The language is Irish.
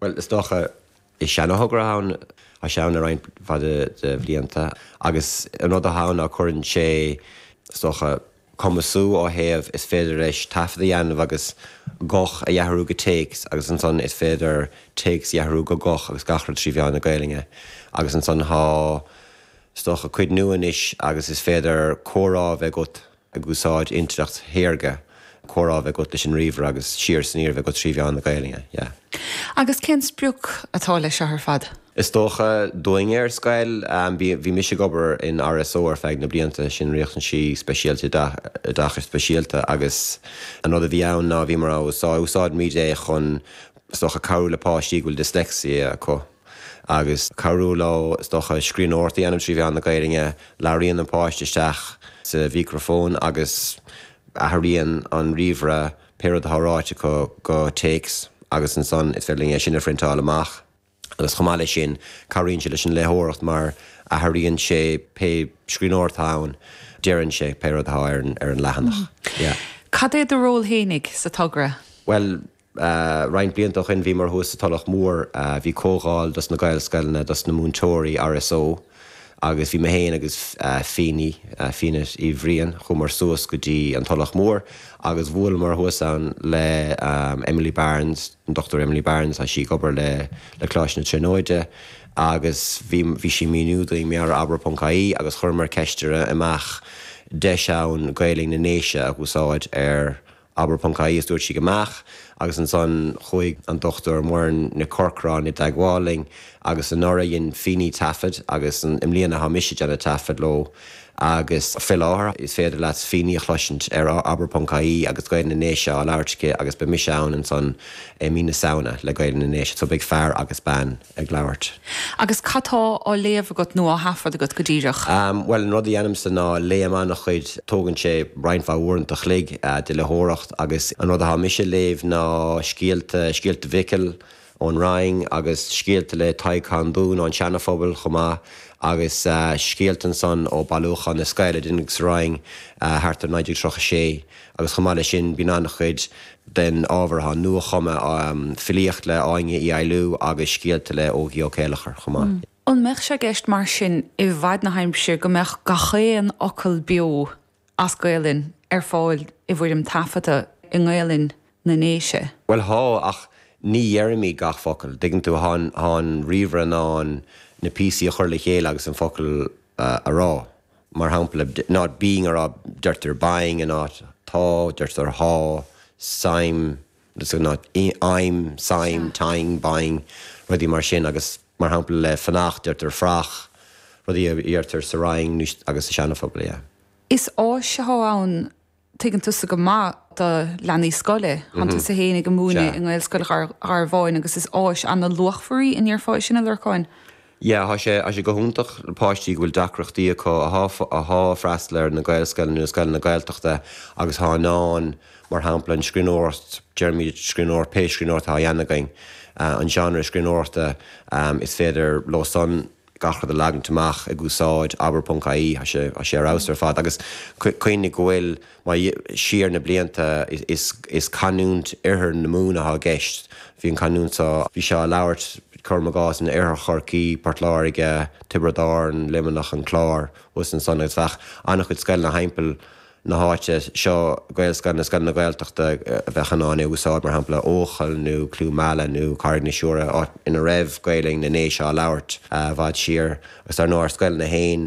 Bhuel, is dócha, is seanathogra é, tá sé ann le roinnt mhaith de bhlianta, agus an rud atá ann ná cuireann sé, is dócha, cumasú ó thaobh, is féidir leis taifead a dhéanamh agus guth a athrú go téacs agus ansan is féidir téacs a athrú go guth agus gach rud trí mheán na Gaelainne. Agus ansan tá, is dócha, cuid nua anois agus is féidir comhrá a bheith agat, ag úsáid intleacht shaorga, comhrá a bheith agat leis an ríomhaire agus siar is aniar a bheith agat trí mheán na Gaelainne. Yeah. Agus cén sprioc atá leis seo ar fad? Is dócha, dúinne ar scoil, bhí mise ag obair in RSO ar feadh na blianta, sin Riachtanaisí Speisialta Oideachais Speisialta, agus an rud a bhí ann ná bhíomar ag, úsáidimid é chun, is dócha, cabhrú le páistí go bhfuil dyslexia acu. agus cabhrú leo, is dócha, scríbhneoireacht a dhéanamh trí mheán na Gaelainne. Labhraíonn an páiste isteach sa mhícreafón agus athraíonn an ríomhaire pé rud atá ráite acu go téacs agus ansan is féidir linn é sin a phriontáil amach. Agus chomh maith leis sin, cabhraíonn sé leis an léitheoireacht mar athraíonn sé pé scríbhneoireacht atá ann, deireann sé pé rud atá ar an leathanach. Yeah. Cad é do ról fhéinig sa togra? Bhuel, Roinnt blianta ó shoin bhíomar thuas sa Tulach Mhór, bhí comhdháil dos na Gaelscoileanna, dos na múinteoirí, RSO, agus bhí mé féin agus Fíní, Fianait Uí Bhriain, chuamar suas go dtí an Tulach Mhór agus bhuaileamar thuas ann le Emily Barnes, an Dochtúir Emily Barnes, tá sí ag obair le le Coláiste na Tríonóide agus bhí bhí sí ag míniú dúinn mar gheall ar abair ponc ie agus chuireamar ceist uirthi an mbeadh deis ann Gaolainn na nDéise a úsáid ar Abair ponc ie is dúirt sí go mbeadh agus ansan chuaigh an Dochtúir Muireann Nic Corcráin i dteagmháil linn agus anuraidh dhein Fíní taifead agus i mbliana tá mise ag déanamh taifead leo agus faoi láthair is féidir leat Fíní a chloisint ar abair ponc ie agus Gaelainn na nDéise á labhairt aici agus beidh mise ann ansan i mí na Samhna le Gaelainn na nDéise so beidh fear agus bean. ag labhairt. Agus cad tá á léamh agat nó á thaifead agat go díreach? Bhuel, an rud a dheinimse ná léann mé an-chuid, tógann sé roinnt mhaith uaireanta a chloig de léitheoireacht agus an rud atá mise a léamh ná scéalta, scéalta Mhicil ón Rinn agus scéalta le Tadhg Cundún ón Seana-Phobal chomh maith agus scéalta ansan ó Bailiúchán na Scoil a deineadh sa Rinn thart ar 1936 Agus chomh maith leis sin, bíonn an-chuid den ábhar atá nua-chumtha, filíocht le Áine Uí Fhoghlú agus scéalta le hÓgie Ó Céilleachair chomh maith. An mbeadh sé i gceist mar sin i bhfaid na haimsire go mbeadh gach aon fhocal beo as Gaelainn ar fáil i bhfoirm taifeadta i nGaelainn na nDéise? Bhuel tá, ach ní dheirimid gach focal, dtuigeann tú, tá an ríomhaire in ann na píosaí a chur le chéile agus an focal a rá. mar shampla, in áit binn ar a' deirtear binn in áit tá, deirtear thá, suim, so in áit im, suim, tinn, binn, rudaí mar sin agus mar shampla le fanacht deirtear fuireach, rudaí a dheirtear sa Rinn agus sa Seana-Phobal, yeah. Is áis athá ann Tuigeann tusa go maith do leanaí scoile. Thánn tusa féin ag múineadh i nGaelscoil Gharbháin agus is áis ana-luachmhar í, an ndéarfá é sin, a Lorcáin? Yeah, thá sé, thá sé go hiontach le páistí go bhfuil deacrachtaí acu, a thá a' freastal ar na Gaelscoileanna nó scoileanna Gaeltachta agus thá in ann, mar shampla, an scríbhneoireacht, deirimid scríbhneoir, pé scríbhneoireacht thá á dhéanamh againn, an genre scríbhneoireachta, is féidir leo san, gach rud a leagaint amach ag úsáid abair.ie, tá sé tá sé ar fheabhas ar fad agus cuimhnigh go bhfuil mar siar na blianta is is canúint Oirthear na Mumhan athá i gceist, bhí an canúint seo, bhí sé á labhairt, cuirim i gcás, in Oirthear Chorcaí, Port Láirge, Tiobraid Árann, Luimneach, an Clár, agus ansan agus bheadh an-chuid scoileanna thimpeall na háite seo, Gaelscoileanna, scoileanna Gaeltachta a bheadh in ann é a úsáid, mar shampla, Eochaill nó Cluain Meala nó Carraig na Siúire, áit ina raibh Gaolainn na nDéise á labhairt i bhfad siar, agus dar ndóigh ár scoileanna féin,